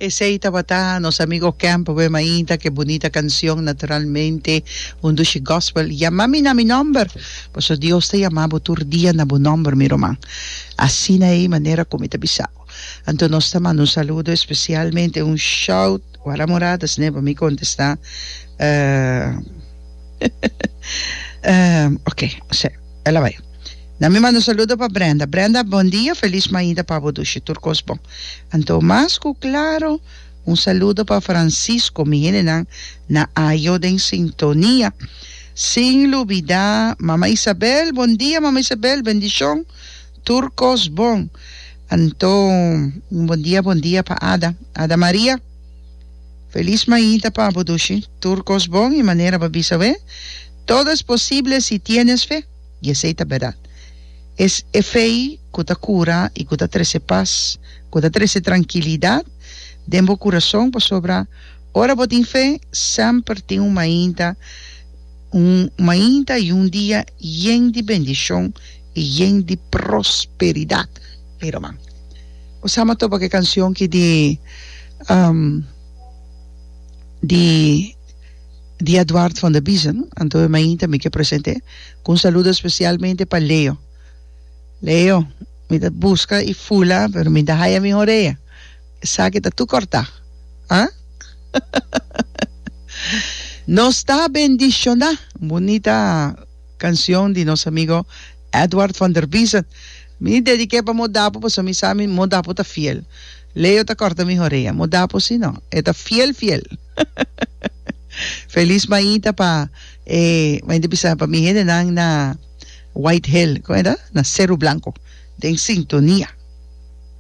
Esey tabata nos amigo Camp Wema Ainda ke bunita cancion Naturalmente un dushi gospel Yama mi na mi nomber Paso Dios ta yama bo tur dia na bo nomber mi ruman Asina ey manera cu mi ta bisao Anto nos ta manda un saludo especialmente un shout Wara Morada sne pa mi contesta Oke Ela bay. Na mi manda saludo pa Brenda. Brenda, bon dia, felis mainta pa bo dushi, tur kos bon. Anto mas ku klaro, un saludo pa Francisco, mi hendenan na Ajo den sintonia. Sin lubidá Mama Isabel, bon dia Mama Isabel, bendishon, tur kos bon. Anto un bon dia, bon dia pa Ada. Ada Maria, felis mainta pa bo dushi, tur kos bon, i manera bo a bisa awe, Todo es posible si tienes fe. i esei ta bèrdat. Es e fe ku ta kura i ku ta trese pas, ku ta trese trankilidat den bo kurason, pasobra ora bo tin fe, semper tin un mainta, un mainta i un dia yen di bendishon i yen di prosperidat. Mira man. Bo sa m'a topa ku e kansion ki di di. di Eduard van der Biesen, anto e mainta mi ke presente ku un saludo spesialmente pa Leo. Leo, mi ta buska e fula pero mi ta haya mi horea, esaki ta tur kortá. Ha? Nos ta bendishoná! Un bunita kanshon di nos amigo Eduard van der Biesen. Mi dedik'é pa Modapo pasobra mi sa Modapo ta fiel. Leo ta korta mi horea. Modapo si no, e ta fiel fiel. Feliz mañita pa e mañita bisa pa mi hendenan na White Hill, como era? Na Cerro Blanco, den sintonia.